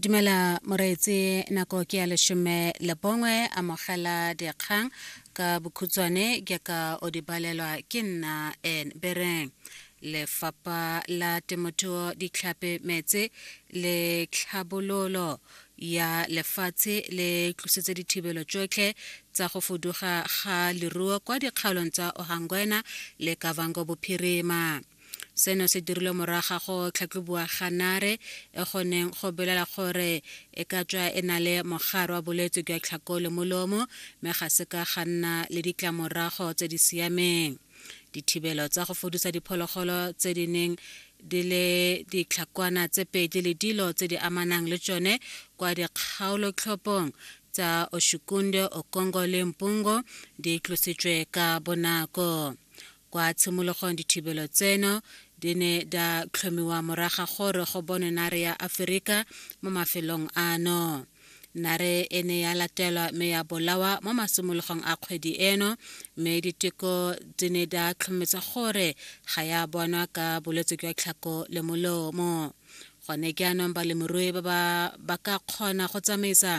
dumela moreetse nako ke ya leshome le bongwe amogela dikgang ka bokhutswane ke ka o di balelwa ke nna en bereng lefapha la temothuo ditlhape metse le tlhabololo ya lefatshe le tlositse dithibelo tsotlhe tsa go fuduga ga leruo kwa dikgaolong tsa ohangwena le kavango bophirima seno se dirilwe moraga go tlhatlhoboa ga nare e goneng go belela gore e ka tswa e na le mogare wa bolwetse jwa tlhako le molomo mme ga se ka ga nna le ditlamorago tse di siameng dithibelo tsa go fodisa diphologolo tse di neng di le ditlhakwana tse pedi le dilo tse di amanang le tsone kwa dikgaolotlhopong tsa oshukunde okongo le mpungo di tlositswe ka bonako Kwa tshimologong dithibelo tseno di ne da tlhomiwa moraga gore go bonwe nare ya Aferika mo mafelong ano. Nare e ne ya latelwa me ya bolawa mo masimologong a kgwedi eno me diteko di ne da tlhometsa gore ga ya bonwa ka bolwetse jwa tlhako le molomo. gone jaanong balemirui ba ba ba ka kgona go tsamaisa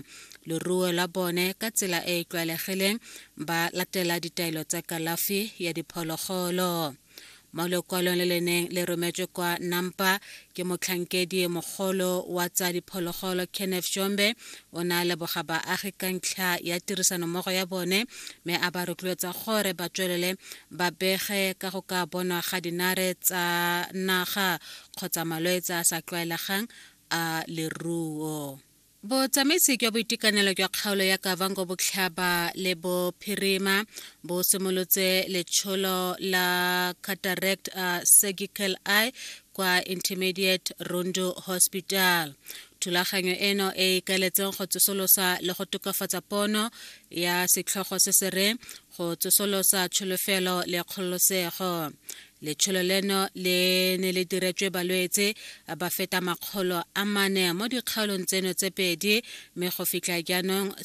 leruo la bone ka tsela e e tlwaelegileng ba latela ditaelo tsa kalafi ya diphologolo mo lekwalong le le neng le rometswe kwa nampa ke motlhankedi mogolo wa tsa diphologolo kenneth shombe o ne a leboga baagi ka ntlha ya tirisanommogo ya bone mme a ba rotloetsa gore ba tswelele ba bege ka go ka bonwa ga dinare tsa naga kgotsa malwetse a sa tlwaelegang a leruo botsamaisi jwa boitekanelo jwa kgaolo ya kavango botlhaba le bophirima bo simolotse letsholo la cataract uh, surgical eye kwa intermediate rondo hospital thulaganyo eno e ikaletseng go tsosolosa le go tokafatsa pono ya setlhogo se se reng go tsosolosa tsholofelo le kgololosego Letsholo leno le ne le diretswe balwetse ba feta makgolo a mane mo dikgaolong tseno tse pedi mme go fitlha jaanong